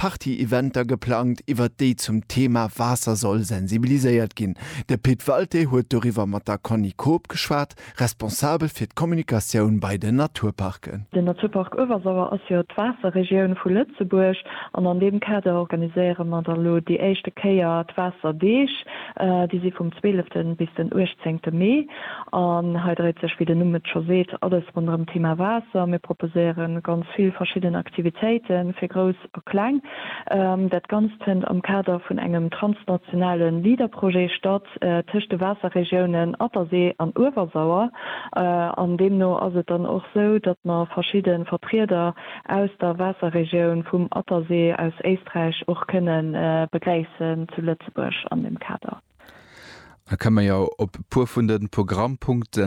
Party-Eventer geplangt, iwwert déi zum Thema Waasser soll sensibiliséiert ginn. De Pit Walté huet doriwwer mat der Conny Koob geschwat, Responsabel fir d'Kommunikatioun bei den Naturparken. Den Naturpark Uewersauer ass jo d'Waasserregioun vu Lëtzebuerg an an deem Kader organiséiere mer da lo déi éischte Kéier d'Waasserdeeg. Déi si vum 12 bis den 18 Mee. An hei dréit sech, wéi den Numm et scho seet, alles ronderëm d'Thema Waasser. Mir proposéiere ganz vill verschidden Aktivitéite fir Grouss a Kleng. Dat Ganzt fënnt am Kader vun engem transnationale LEADER-Projet statt tëscht de Waasserregiounen Attersee an Uewersauer. An deemno ass et dann och esou, datt mer verschidde Vertrieder aus der Waasserregioun vum Attersee aus Éisträich och kënne begréissen zu Lëtzebuerg an deem Kader. Da kënne mer jo op e puer vun de Programmpunkte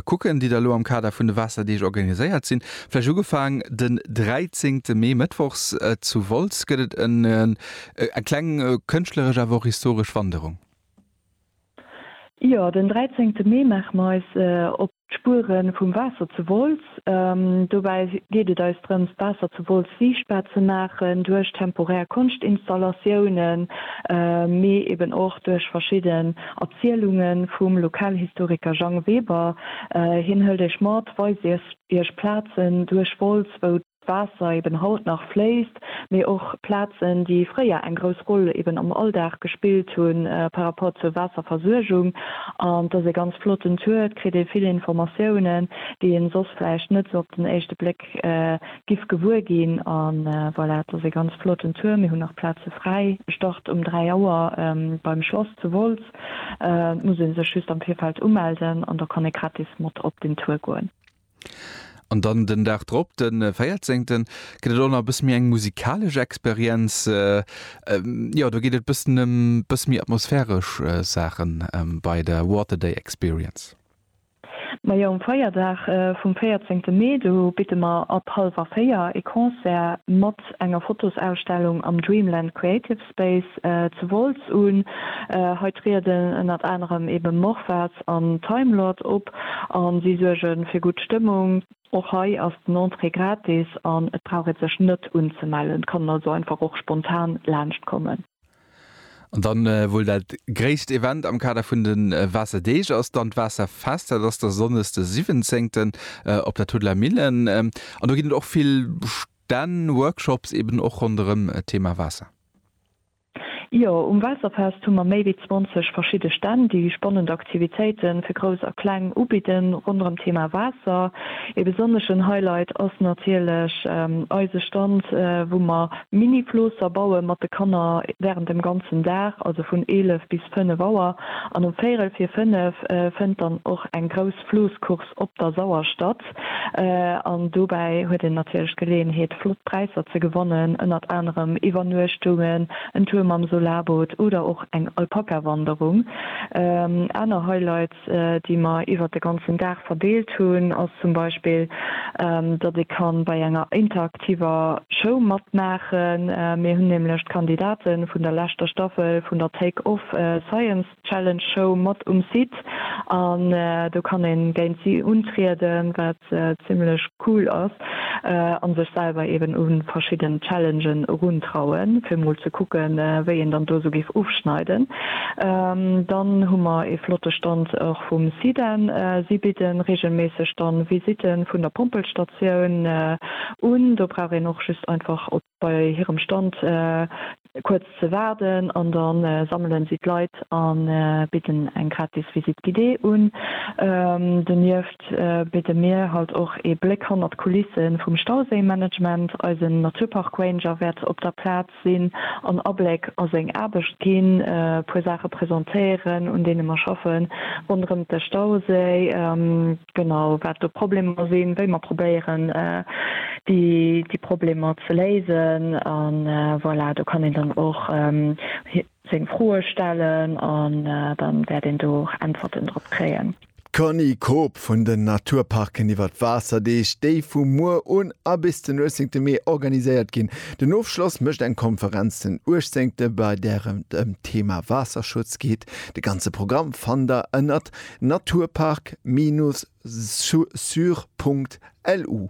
kucken, déi da elo am Kader vun de Waasserdeeg organiséiert sinn. Vläicht ugefaang den 13. Mee, mëttwochs zu Wolz gëtt et eng kleng kënschtleresch, awer och historesch Wanderung. Jo, den 13. Mee maache mer eis op. D'Spuere vum Waasser zu Wolz, Dobäi geet et eis drëms, d'Waasser zu Wolz siichtbar ze maachen, duerch temporär Konschtinstallatiounen, mee eben och duerch verschidden Erzielunge vum Lokalhistoriker Jang Weber. Hien hëlt iech mat, weist iech Plazen duerch Wolz, wou Waasser eben haut nach fléisst, mee och Plazen, déi fréier eng grouss Roll eben am Alldag gespillt hu par rapport zur Waasserversuergung. An et ass ee ganz flotten Tour, et kritt ee vill Informatiounen, déi een soss vläicht net sou op den éischte Bléck giff gewuer ginn. A voilà, et ass ee ganz flotten Tour. Mir hunn nach Plaze fräi. E Start um 3 Auer beim Schlass zu Wolz. Et muss ee sech just am Virfeld umelden an da kann ee gratis mat op den Tour goen. An dann den Dag drop, de véierzéngten, gëtt et och nach e bësse méi eng musikalesch Experienz. Jo, do geet et e bëssen ëm e bësse méi atmosphäresch Saachen bei der Water Day Experience. Majo, um Feierdag vum véierzéngte Mee, do bidde mer ab hallwer véier e Concert mat enger Fotosausstellung am Dreamland Creative Space zu Wolz un. Hei trieden ënnert anerem ebe Morphards an Timelord op a si suerge fir gutt Stëmmung. Och hei ass den Entrée gratis an et brauch ee sech net unzemellen. Et kann een also einfach och spontan laanscht kommen. An dann wuel dat gréisst Event am Kader vun de Waasserdeeg ass dann d'Waasserfest. Dat ass da Sonndëgs de 17 op der Tuddeler Millen an do ginn et och vill. Dann Workshops eben och ronderëm d'Thema Waasser. Jo, um Waasserfest hu mer méi wéi 20 verschidde Stänn, déi spannend Aktivitéiten fir Grouss a Kleng ubidden ronderëm d'Thema Waasser. Ee besonneschen Highlight ass natierlech eise Stand, wou mer Mini-Floosser baue mat de Kanner während dem ganzen Dag, also vun 11 bis 5 Auer. An um Véierel vir 5 fënnt dann och eng grouss Flooss-Course op der Sauer statt. Produkt. An dobäi huet een natierlech d'Geleeënheet, flott Präisser ze gewannen, ënnert anerem Iwwernuechtungen, en Tour mam Solarboot oder och eng Alpaka-Wanderung. Aner Highlights, déi mer iwwert de ganzen Dag verdeelt hunn, ass zum Beispill, datt ee ka bei enger interaktiver Show matmaachen. Mir hunn nämlech d'Kandidate vun der leschter Staffel vun der Take Off Science Challenge Show mat um Site an do kann een géint si untrieden, wat zimlech cool ass, an sech selwer eben un verschidden Challengen erun trauen fir mol ze kucken wéi een dann do sou géif ofschneiden. Dann hu mer ee flotte Stand och vum Sidan, si bidden regelméisseg dann Visiten vun der Pompelstatioun un, do brauch een och just einfach op bei hirem Stand kuerz ze waarden an da sammelen si d'Leit a bidden eng gratis Visite guidée un. Donieft bidde mir halt och ee Bléck hannert d'Kulisse vum Stauséimanagement. Eisen Naturpark-Ranger wäert op der Plaz sinn, en Abléck a seng Aarbecht ginn, e puer Saache presentéieren, un deene mer schaffen ronderëm de Stauséi. genau wat do Problemer sinn, wéi mer probéieren déi Problemer ze léisen. A voilà, do kann een dann och seng Froe stellen an da wäert een do och Äntwerten drop kréien. D'Connie Koob vun den Naturparken iwwer d'Waasserdeeg, déi vu muer un a bis den 18 Mee organiséiert ginn. Den Ofschloss mécht eng Konferenz den 18 bei där et ëm d'Thema Waasserschutz geet. De ganze Programm fannt der ënnert Naturpark-sur.lu.